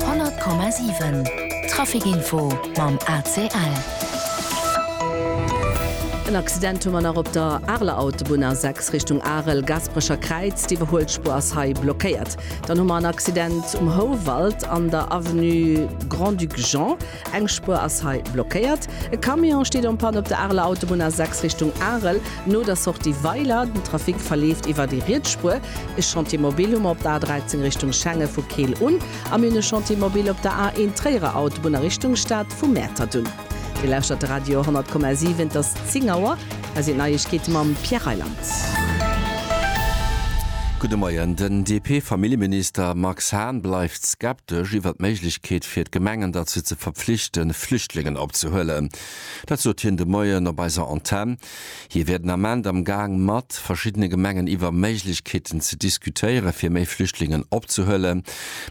100,7 Trafic info mam ACL. En Accident hu mer nach op der Areler Autobunn, A6 Richtung Arel, Gasperecher Kräiz. D'Iwwerhuelspuer ass hei blockéiert. Dann hu mer en Accident um Houwald an der Avenue Grand-Duc Jean. Eng Spuer ass hei blockéiert. E Camion steet en panne op der Areler Autobunn A6 Richtung Arel, no der Sortie Weiler. Den Trafic verleeft iwwer déi riets Spuer. E Chantier mobile hu mer op der A13 Richtung Schengen vu Keel un a mir hunn e Chantier mobile op der A1 Tréierer Autobunn a Richtung Stad vu Mäertert un. Dir lauschtert de Radio 100,7, et ass 10 Auer. Hei sinn d'Neiegkeete mam Pierre Reyland. Gudde Moien. Den DP-Familljeminister Max Hahn bleift skeptesch iwwert d'Méiglechkeet fir d'Gemengen derzou ze verpflichten, Flüchtlingen opzehuelen. Dat sot hien de Moien op eiser Antenn. Hie wier den Ament am Gaang matt verschiddene Gemengen iwwer Méiglechkeeten ze diskutéieren, fir méi Flüchtlingen opzehuelen.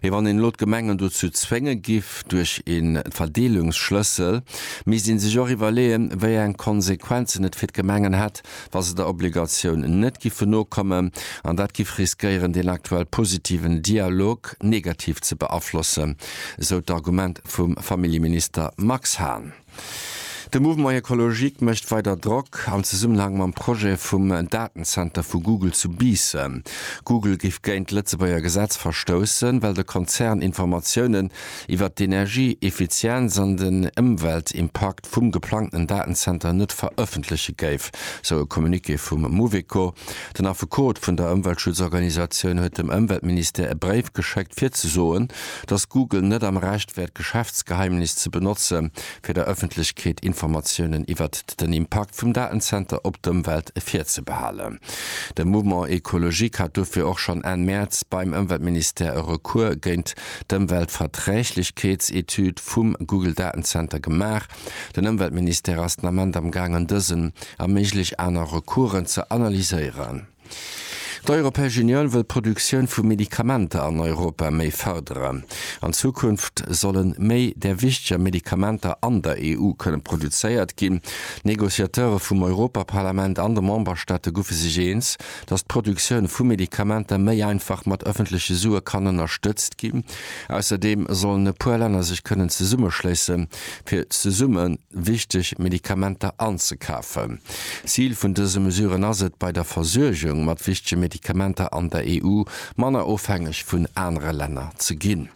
Mee wann een elo d'Gemengen dozou zwénge giff duerch ee Verdeelungsschlëssel, misst ee sech och iwwerleeën, wéi eng Konsequenzen et fir d'Gemengen hätt, wa se der Obligatioun net giffe nokommen. An dat giff riskéieren, deen aktuell positiven Dialog negativ ze beaflossen, esou d'Argument vum Familljeminister Max Hahn. De Mouvement Ecologique mécht weider Drock am Zesummenhang mam Projet vum Datenzenter vu Google zu Biissen. Google géif géint d'Lëtzebuerger Gesetz verstoussen, well de Konzern Informatiounen iwwert d'Energieeffizienz an den Ëmweltimpakt vum geplangten Datenzenter net verëffentleche géif, sou e Communiqué vum Mouveco. Den Affekot vun der Ëmweltschutzorganisatioun huet dem Ëmweltministère e Bréif geschéckt, fir ze soen, dass Google net am Recht wär d'Geschäftsgeheimnis ze benotze fir der Ëffentlechkeet Informatiounen iwwert den Impakt vum Datenzenter op d'Ëmwelt virzebehalen. De Mouvement Ecologique hat dofir och schonn Enn Mäerz beim Ëmweltministère e Recours géint d'Ëmweltverträglichkeetsetüd vum Google Datenzenter gemaach. Den Ëmweltministère ass den Ament am gaangen dësen a méiglech aner Recoursen ze analyséieren. D'Europäesch Unioun wëll d'Produktioun vu Medikamenter an Europa méi fërderen. An Zukunft solle méi där wichteger Medikamenter an der EU kënne produzéiert ginn. D'Negociateure vum Europaparlament an de Memberstaate guffe sech eens, datt d'Produktioun vu Medikamenter méi einfach mat ëffentleche Sue kann ënnerstëtzt ginn. Ausserdeem sollen e puer Länner sech kënnen zesummeschléisse fir zesumme wichteg Medikamenter anzekafen. Zil vun dëse Mesuren ass et, bei der Versuergung mat wichtege Medikamenter an der EU manner ofhängeg vun anere Länner ze ginn.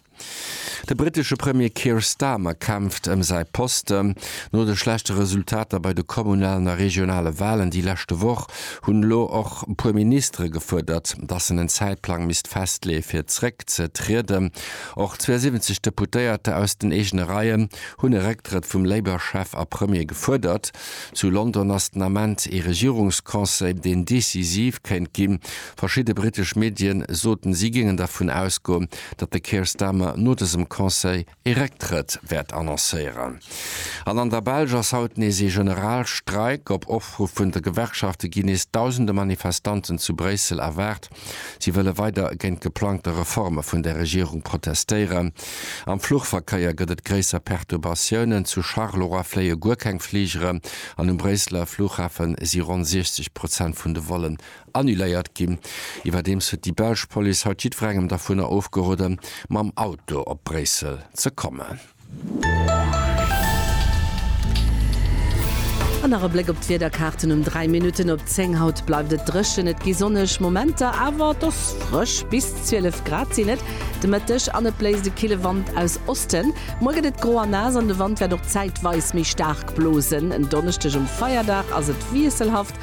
De britesche Premier Keir Starmer kämpft ëm säi Posten. No de schlechte Resultater bei de kommunalen a regionale Walen déi leschte Woch hunn elo och e puer Ministere gefuerdert, datt en en Zäitplang misst festleeë fir zeréck ze trieden. Och 72 Deputéierter aus den eegene Reien hunn e Récktrëtt vum Labour-Chef a Premier gefuerdert. Zu London ass den Ament ee Regierungsconseil, deen decisiv kéint ginn. Verschidde britesch Medien soten, si géingen dervun ausgoen, datt de Keir Starmer no dësem Conseil ee Récktrëtt wäert annoncéieren. An an der Belsch ass haut nees ee Generalstreik. Op Opruff vun de Gewerkschafte ginn nees dausende Manifestanten zu Bréissel erwaart. Si wëlle weider géint geplangte Reforme vun der Regierung protestéieren. Am Fluchverkéier gëtt et gréisser Perturbatiounen. Zu Charleroi fléie guer keng Fligeren an um Bréisseler Fluchhafe si ronn 60 Prozent vun de Vollen annuléiert ginn. Iwwerdeems huet déi belsch Police haut jiddwerengem dervunner ofgeroden, mam Auto op Bréissel ze kommen. An nach e Bléck op d'Wiederkaarten um 3 Minutten op 10. Haut bleift et dréchen, et gi sonneg Momenter, awer et ass frësch, bis 12 Grad sinn et de Mëtteg an et bléist e kille Wand aus Osten. Muer gëtt et gro a naass an de Wand wäert och zäitweis méi staark blosen. En Donneschdeg um Feierdag ass et wiesselhaft,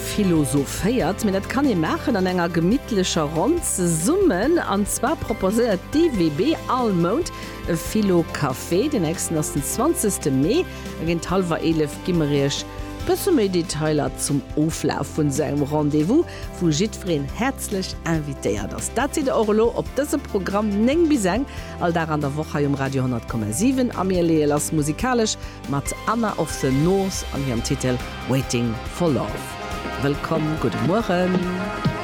Philosophéiert, mee dat kann ee maachen an enger gemittlecher Ronn zesummen. An zwar proposéiert d'EWB all Mount e Philo-Café. Den nächsten ass den 20 Mee a géint hallwer 11 gi mer iech e bësse méi Detailer zum Oflaf vun esou engem Rendez-vous, wou jiddwereen häerzlech invitéiert ass. Dat seet der och elo op dëse Programm, 9 bis eng, all Dag an der Woch hei um Radio 100,7 a mir leeë lass musikalesch. Mat Anna of the North an hirem Titel Waiting for Love. Wëllkomm, gudde Mueren.